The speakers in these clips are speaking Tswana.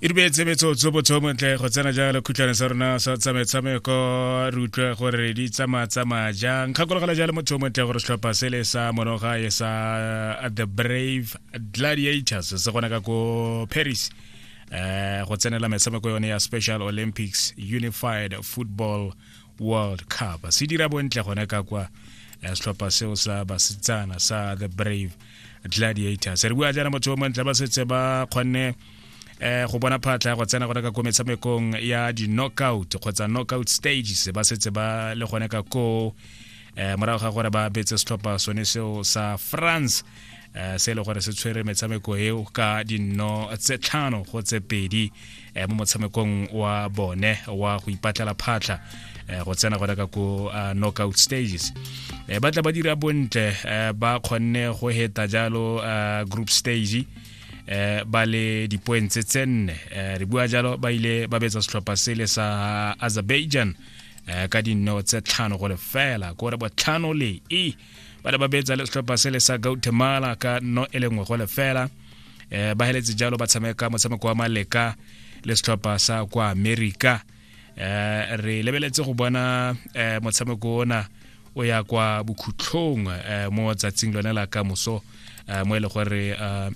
e dumetse metsotso botho montle go tsena jalo khutlhwane sa rona sa tsamaetshameko re utlwe gore di tsamaa-tsamaya jang kgakologela jalo motho montle gore setlhopha sele sa monoga e sa uh, the brave gladiators se gona ka ko paris um go tsenela metshameko yone ya special olympics unified football world cup se dira bontle gone ka kwa eh, setlhopha seo sa basetsana sa the brave gladiators re bua jaana motho o montle ba setse ba kgonne eh go bona phatla go tsena gone ka ko metshamekong ya di-knockout kgotsa knockout stages ba setse ba le gone ka ko eh morago ga gore ba betse setlhopha sone seo sa france eh se e le gore se tshwere metshameko eo ka dinno tse tlhano go tse pedi eh, mo motshamekong wa bone wa go ipatlela phatlha eh, go tsena gona ka ko uh, knockout stages eh, ba tla ba dira bontle eh, ba kgonne go heta jalo uh, group stage eh ba le dipoeng tse tse nne eh, re bua jalo ba ile ba betsa setlhopha sele sa azerbaijan eh, ka dinno tse tlhano go lefela kore botlhano le e ba ne ba betsa le setlhopha se le sa gautemala ka nno e le nngwe go lefela um ba heletse jalo ba tshameka motshameko wa maleka le setlhopha sa kwa america um re lebeletse go bona um motshameko ona o ya kwa bokhutlhong um mo tsatsing lone la ka moso um mo e le gore um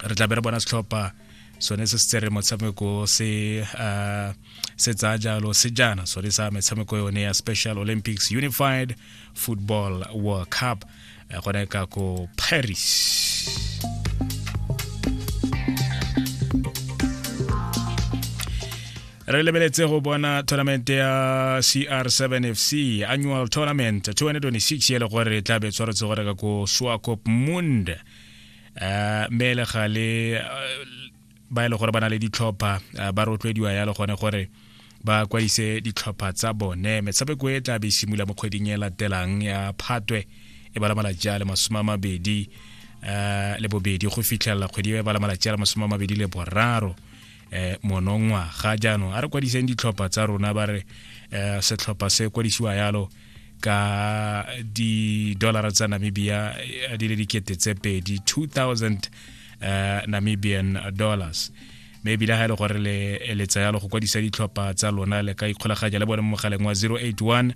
re tla be re bona setlhopha sone se se tsere motshameko se um se tsaya jalo sejana sone sa metshameko yone ya special olympics unified football world cup eh, gone ka ko paris re lebeletse go bona tournament ya cr7 fc annual tournament 2026 e le gore e tlabe tshwaretse gore ka ko swakop mund uh, eh, mele gale uh, eh, ba e le gore ba na le ditlhopha eh, ba rotloediwa yalo gone gore ba kwadise ditlhopha tsa bone metshameko e tla be e simula mo kgweding e latelang ya phatwe e bala malatsi a le masome a mabedi um le bobedi go fitlhelela kgwedi e bala malatsi a le masome a mabedi le boraro um monongwaga jaanong a re kwadiseng ditlhopha tsa rona ba re um setlhopha se kwadisiwa yalo ka di-dollara tsa namibia eh, di le dikete tse pedi 2000 eh, namibian dollars mme ebile ga e le gore le tsayalo go kwadisa ditlhopha tsa lona le ka ikgolaganya le bone mo mogaleng wa 081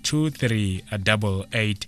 2388